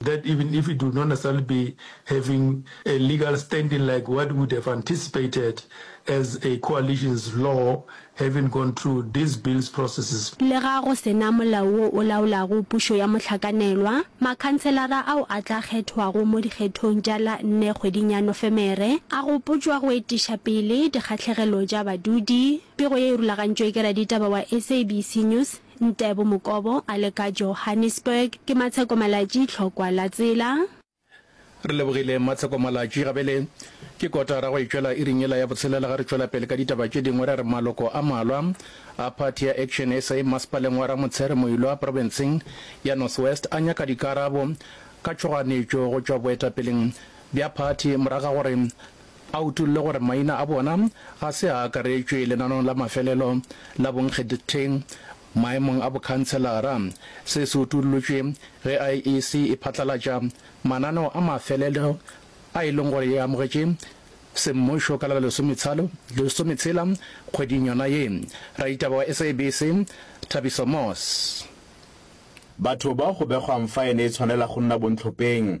that even if it would not necessarily be having a legal standing like what would have anticipated as a coalition's law having gone through these bills processes. Lega go se na molao wo o laolago pušo ya mohlakanelwa, makhanselara ao a tla kgethwago mo dikgethong tša la nne kgweding ya Nofemere a gopotšwa go etiša pele dikgahlegelo tša badudi, Pego ye e rulagantšwe ke raditaba wa SABC News, Ntebo Mokobo a le ka Johannesburg. Ke Matsheko Malatji, Tlhokwa la tsela. Re lebogile Matsheko Malatji. Gabele ke kotara go e tšwela iring yela ya botshelela ga re tšwela pele ka ditaba tše dingwe ra re maloko a malwa a phathi ya Action sa maspaleng wa Ramotshare Moilwa profenseng ya North West a nyaka dikarabo ka tšhoganetšo go tšwa boetapeleng bja phathi moraga gore A utolle gore maina a bona ga se a akaretšwe lenanong la mafelelo la bonkgetheng maemong a bokhanselara. Se se utollotšwe ge IEC e phatlalatša mananeo a mafelelo a e leng gore e amogetše semmušo ka la lesometshela kgweding yona ye. Raditaba wa SABC Thabiso Moss. Batho bao go begwang faene e tshwanela go nna bontlhopeng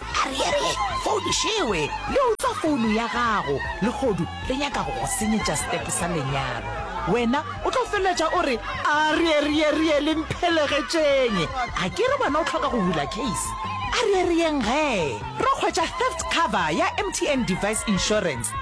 a re ere founu šewe le utswa founu ya gago legodu re nyaka go go senyetša step sa lenyalo wena o tlo feleletša o re a re ere ere ere le mphelegetšeng a ke re wena o tlhoka go bula case a re ere yeng ge re kgwetša theft cover ya mtn device insurance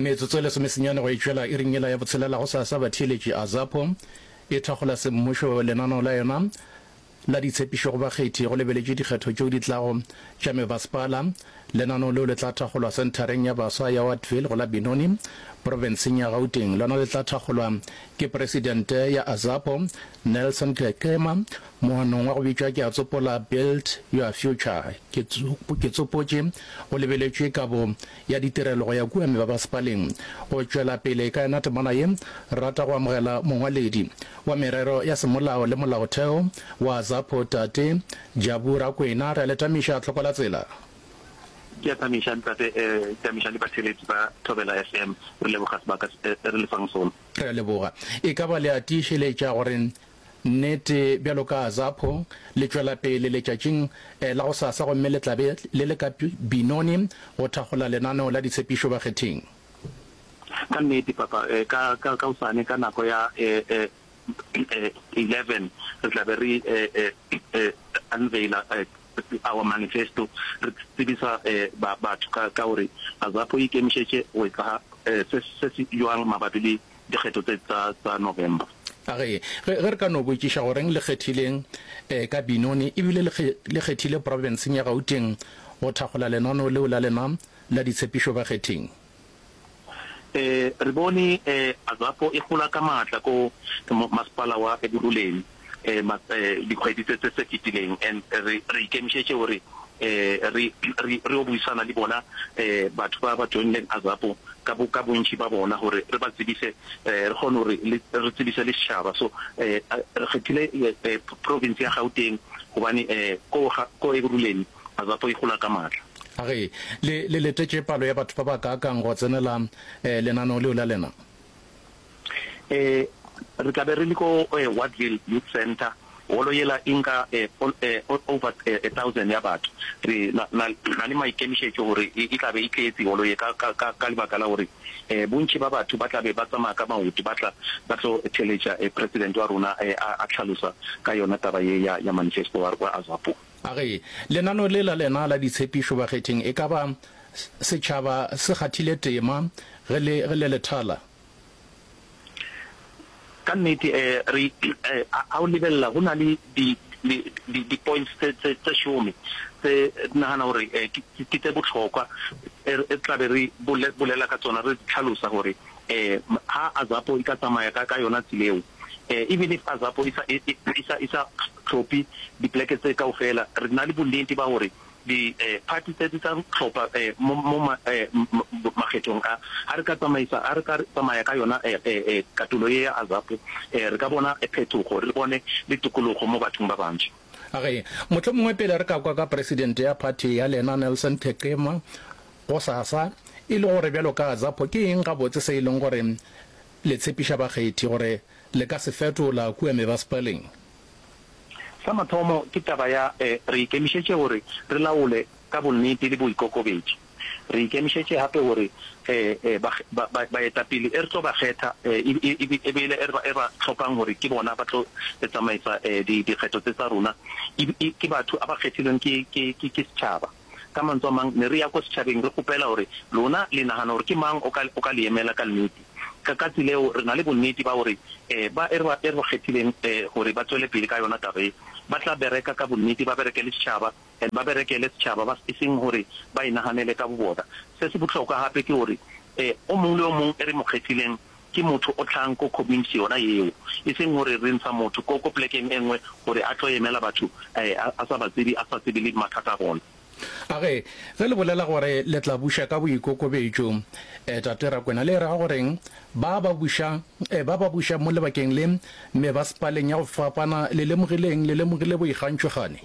Metsotso e lesomesenyane go e tšwela iring yela ya botshelela gosasa, batheeletši, Azapo e thakgola semmušo lenaneo la yona la ditshepišo go bakgethi go lebeletšwe dikgetho tšeo di tlago tša mebasepala. Lenaneo leo le tla thakgolwa senthareng ya baswa ya Wattville go la Benoni, profenseng ya Gauteng. Lona le tla thakgolwa ke presidente ya Azapo, Nelson Kekema, moanong wa go bitšwa Ke a Tsopola, Build Your Future. Ke tsopotše go lebeletšwe ka bo ya ditirelo go ya kua mebabasepaleng go tšwela pele ka yona temana ye, rata go amogela Mongwaledi wa Merero ya Semolao le Molaotheo wa ZAPO Tate Jabu Rakwena. Re a le tamiša, hlokola tsela. Ke a tamiša ntate, tamiša le batheeletši ba Thobela FM. Re leboga sebaka se re le fang sona. Re a leboga. E ka ba le a tiišeletša gore Nnete, bjalo ka Azapho, le tšwela pele letšatšing la gosasa gomme le tla be le le ka Binoni go thakgola lenaneo la ditshepišo bakgething. Ka nnete, Papa, ka, ka, ka hosane ka nako ya eleven re tla be re unveil-a our manifesto, re tsebisa batho ka, ka gore Azapho e ikemišetše go etsa se, se se bjang mabapi le dikgetho tse tsa tsa November. A re, Ge, ge re ka no botšiša goreng le kgethile eh, ka Benoni e bile le, kge, le kgethile profenseng ya Gauteng go thakgola lenaneo leo la lena la ditshepišo bakgething. Eh, re bone eh, Azapo e gola ka maatla ko mo, masepala wa Ekurhuleni. dikgwedi tse tse fetileng and re re ikemišetše gore re re re o buisana le bona batho ba ba joinileng azapo ka bo ka bontši ba bona gore re ba tsebise re kgone gore re tsebise le setšhaba so re kgethile province ya gauteng gobane ko ko ekuruleni azapo e gola ka maatla a re le letetše palo ya batho ba ba kaakang go tsenela lenaneo leo la lena um re tla be re le ko um Wattville Youth Centre, holo yela e nka um um over um a thousand ya batho. Re na, na, na le maikemišetšo gore e, e tla be e tletše holo ye, ka, ka, ka, ka lebaka la gore um bontši ba batho ba tla be ba tsamaya ka maoto ba tla ba tlo theletša um President wa rona um a, a hlalosa ka yona taba ye ya, ya manifesto wa, wa Azapo. A re lenano le la lena la ditshepišo bakgething e ka ba setšhaba se kgathile tema ge le ge le le thala? Ka nnete eh re eh ha o lebelela go na le di di di di points tse tse tse šome tse re nagana gore eh ke ke tse bohlokwa e re re tla be re bolela ka tsona re tlhalosa gore eh ha AZAPO e ka tsamaya ka ka yona tseleo. E bile fa Zapo e sa, e, e, e sa, e sa tlhophe dipoleke tse kaofela, re na le bonnete ba gore di, eh, phati tse di tla tlhopha eh, mo, mo ma, eh, makgethong a. Ga re ka tsamaisa, ga re ka tsamaya ka yona eh, eh, eh, katulo ye ya Zapo, eh, re ka bona phetogo, re bone le tokologo mo bathong ba bantši. Age, mohlomongwe pele re ka kwa ka presidente ya phati ya lena, Nelson Thekema, gosasa, e le gore bjalo ka Zapo, ke eng gabotse se e leng gore le tshepiša bakgethi gore le ka se fetola kua mebaspaling? Sa mathomo ke taba ya e, re ikemišetše gore re laole ka bonnete le boikokobetši. Re ikemišetše gape gore e, e, ba, ba, ba, baetapele e re tlo ba kgetha e, e, e, e be e le e re ba hlopang gore ke bona ba tlo re tsamaisa e, di, dikgetho tse tsa rona, e, e, ke batho a ba kgethilweng ke, ke, ke, ke setšhaba. Ka mantswe a mang, ne re ya kwa setšhabeng re kgopela gore, Lona le nagana gore ke mang o ka, o ka le emela ka nnete? Ka katse leo, re na le bonnete ba gore um ba e re ba, e re ba kgethileng um gore ba tšwele pele ka yona taba ye, ba tla bereka ka bonnete, ba berekele setšhaba, and ba berekele setšhaba, ba, e seng gore ba inaganele ka bobona. Se se bohlokwa gape ke gore um o mongwe le o mongwe e re mo kgethileng Ke motho o tlang ko community yona yeo, e seng gore re ntsha motho ko, ko plekeng e nngwe gore a tlo emela batho a, a sa ba tsebe, a sa tsebe le mathata a bona. A re, Ge le bolela gore le tla buša ka boikokobetšo, eh, Tate Rakwena, le e ra goreng? Ba ba bušang, eh, ba ba bušang mo lebakeng le, mebasepaleng ya go fapana, le lemogileng, le lemogile boikgantšho gane?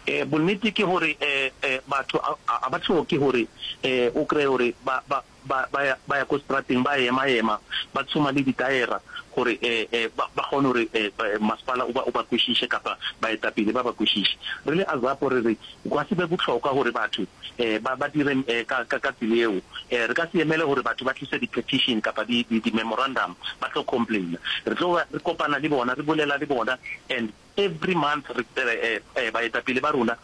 Eh, bonnete ke gore, eh, eh, batho a, a ba hloke gore, eh, o kreye gore ba, ba, ba, ba ya, ba ya ko strateng, ba ema-ema, ba tshoma le ditaera, gore e, e, ba, ba kgone gore e, e, masepala o ba, o ba kwešiše, kapa baetapele ba ba kwešiše. Re le Azapo re re, gwa se be bohlokwa gore batho e, ba, ba dire e, ka, ka, ka tsela yeo. E, re ka se emele gore batho ba tlise di-petition kapa di, di, di-memorandum ba tlo complaina. Re tlo re kopana le bona, re bolela le bona, and Every month baetapele ba rona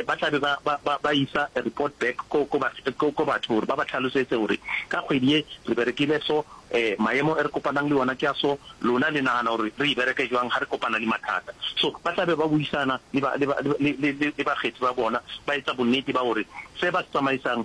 ba tla be ba ba ba ba isa a report back ko ko ko batho gore ba ba tlhalosetse gore ka kgwedi ye re berekile so, maemo e re kopanang le ona ke a so, lona le nagana gore re e bereke jwang ga re kopana le mathata. So ba tla be ba buisana le ba le ba le le le bakgethi ba bona ba etsa bonnete ba gore se ba se tsamaisang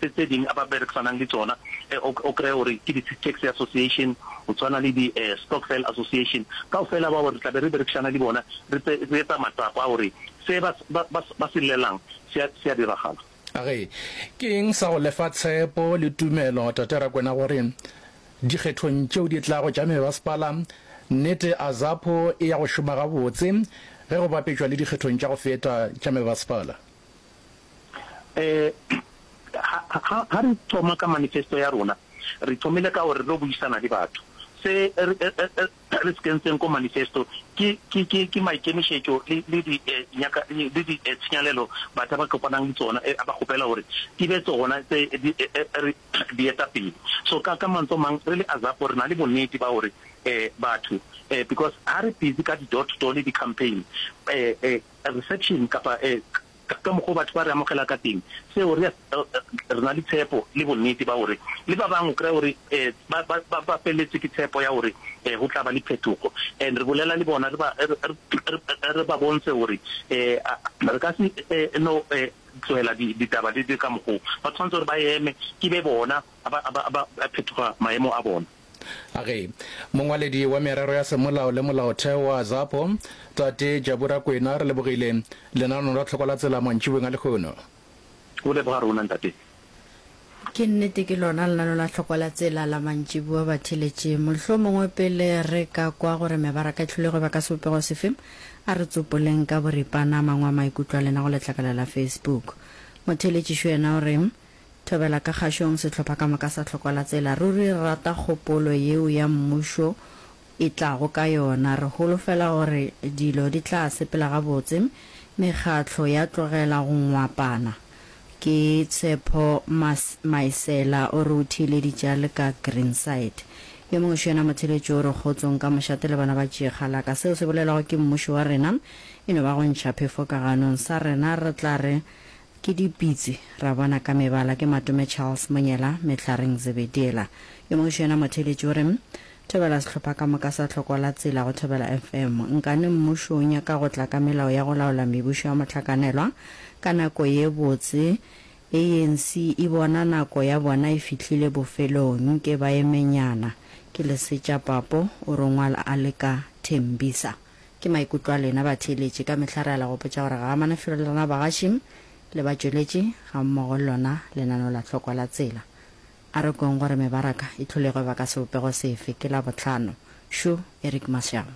tse tse ding a ba berekisanang le tšona e o o kreye gore ke di taxi association go tshwana le di eh stockfell association kaofela bao re tla be re berekisana le bona re tse re etsa matsapa a gore se ba ba ba ba se llelang se a se a diragala. A re, Ke eng sa go le fa tshepo le tumelo, Tate Rakwena, gore dikgethong tšeo di tlago tša mebasepala, nnete Azapo e ya go šoma gabotse ge go bapetšwa le dikgethong tša go feta tša mebasepala? Um ha, ha re thoma ka manifesto ya rona, re thomile ka gore re tlo buisana le batho. Se re se kentseng ko manifesto ke, ke, ke, ke maikemišetšo le, le di, nyaka, le di tshenyalelo batho ba kopanang le tsona, ba kgopela gore di be tsona tse di re dietapele. So ka, ka mantswe a mang, re le AZAPO re na le bonnete ba gore batho, because ha re busy ka di door to door le di-campaign, um. Reception, kapa ka mokgwa o batho ba re amogela ka teng, seo re re na le tshepo le bonnete ba gore le ba bangwe o kry-a gore ba ba ba feleletswe ke tshepo ya gore go tla ba le phetogo and re bolela le bona re ba re ba bontshe gore re ka se no tlohela ditaba di ka mokgwa o ba tshwanetse gore ba eme ke be bona ba phetoga maemo a bona. Age, Mongwaledi wa Merero ya Semolao le Molaotheo wa ZAPO, Tate Jabu Rakwena, re lebogile lenaneong la Tlhoko la Tsela mantšibeng a lehono. Go leboga rona, Ntate. Ke nnete ke lona lenaneo la Tlhoko la Tsela la mantšiboa, batheeletši. Mohlomongwe pele re ka kwa gore mebaraka e hlolego e ba ka sebopego sefe, a re tsopoleng ka boripana a mangwe a maikutlo a lena go letlakala la Facebook. Motheeletši Xu yena o re, Thobela ka kgašong sehlopha ka moka sa Hlokwalatsela. Ruri re rata kgopolo yeo ya mmušo e tlago ka yona. Re holofela gore dilo di tla sepela gabotse, mekgatlo ya tlogela go ngwapana. Ke Tshepho Maesela o re o theeleditše a le ka Greenside. Yo mongwe xo yena motheeletši o re kgotsong ka mošate le bana ba tšeegalaka. Seo se bolelwago ke mmušo wa rena e no ba go ntšha phefo ka ganong. Sa rena re tla re Ke dipitsi, ra bona ka mebala ke Matome Charles Monyela, Mehlareng Zebediela. Yo mongwe xo yena motheeletši o re, Thobela sehlopha ka moka sa Tlhoko la Tsela go Thobela FM. Nkane mmušo o nyaka go tla ka melao ya go laola mebušo ya mohlakanelwa ka nako ye botse. ANC e bona nako ya bona e fihlile bofelong. Nke ba emenyana. Ke Lesetša Papo, o rongwal a le ka Tembisa. Ke maikutlo a lena batheeletši. Ka mehla re ala go botša gore ga a manafelo le rena bagaši le batšweletši gammogo le lona lenaneo la Tlhokwa la Tsela. A re kweng gore mebaraka e hlolego e ba ka sebopego sefe ke Labohlano. Shu, Eric Mashaba.